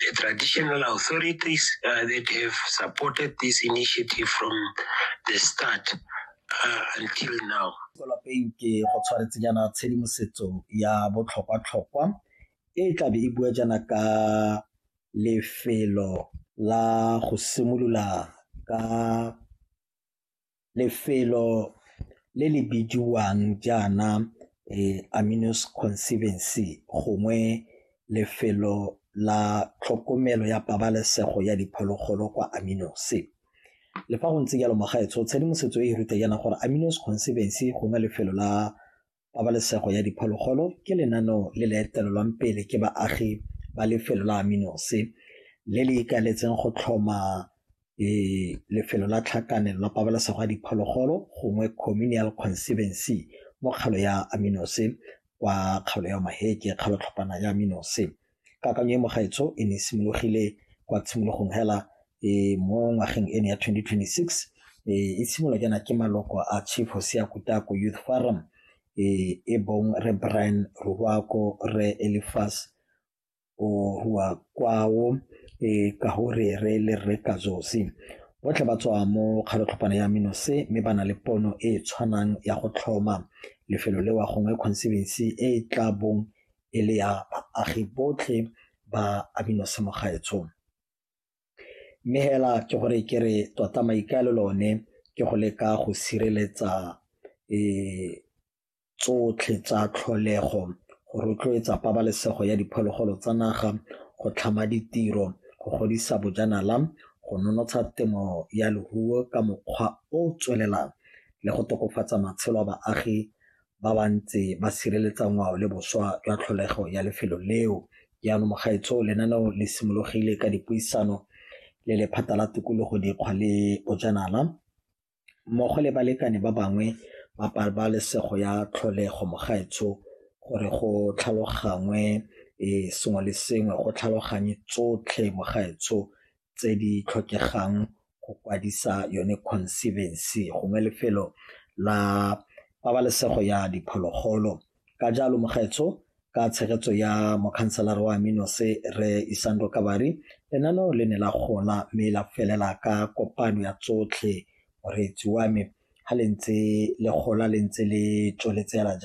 the traditional authorities uh, that have supported this initiative from the start uh, until now. lapeng ke go tshwaretse jaana tshedimosetso ya botlhokwa-tlhokwa e e tlabe e bua jaana ka lefelo la go simolola ka lefelo le le bidiwang jaana Aminous Conservancy gongwe lefelo la tlhokomelo ya pabalesego ya diphologolo kwa Aminous. Le fa go ntse jalo magaetsho tshedimosetso e e ruta jaana gore Aminous Conservancy gongwe lefelo la Pabalesego ya diphologolo ke lenaneo le le etelelwang pele ke baagi ba lefelo la Aminose le le ikaeletseng go tlhoma e, lefelo la tlhakanelo la pabalesego ya diphologolo gongwe communal conservancy mo kgalo ya Aminose kwa kgalo ya Maheke kgalotlhopana ya Aminose. Kakanyo e mogaetsho e ne e simologile kwa tshimologong hela e mo ngwageng ene ya 2026 e simolwa jaana ke maloko a Chief Hosea Kutako Youth Forum e bong Re Brian Ruwako, Re Elifas Ohuakwao ka go re re le Re Kazosi. Botlhe ba tswa mo kgalotlhopana ya Minose mme ba na le pono e e tshwanang ya go tlhoma lefelo lewa gongwe conservancy e e tla bong e le ya baagi botlhe ba Aminosemoga gaetsho. Mme hela ke gore ke re tota maikaelelo one ke go leka go sireletsa tsotlhe tsa tlholego go rotloetsa pabalesego ya diphologolo tsa naga, go tlhama ditiro, go godisa bojanala, go nonotsha temo ya leruo ka mokgwa o o tswelelang le go tokafatsa matshelo a baagi ba ba ntse ba sireletsa ngwao le boswa jwa tlholego ya lefelo leo. Jaanong mogaetsho lenaneo le simologile ka dipuisano le lephata la tikologo dikgwa le bojanala mmogo le balekane ba bangwe ba pabalesego ya tlholego mogaetsho gore go tlhalogangwe sengwe le sengwe go tlhaloganye tsotlhe mogaetsho tse di tlhokegang go kwadisa yone conservancy gongwe lefelo la pabalesego ya diphologolo. Ka jalo mogaetsho ka tshegetso ya mokhanselara wa Aminose re Isando Kabari lenaneo le ne la gola mme la felela ka kopano ya tsotlhe moreetsi wa me ga le ntse le gola le ntse le tsweletse hela jang.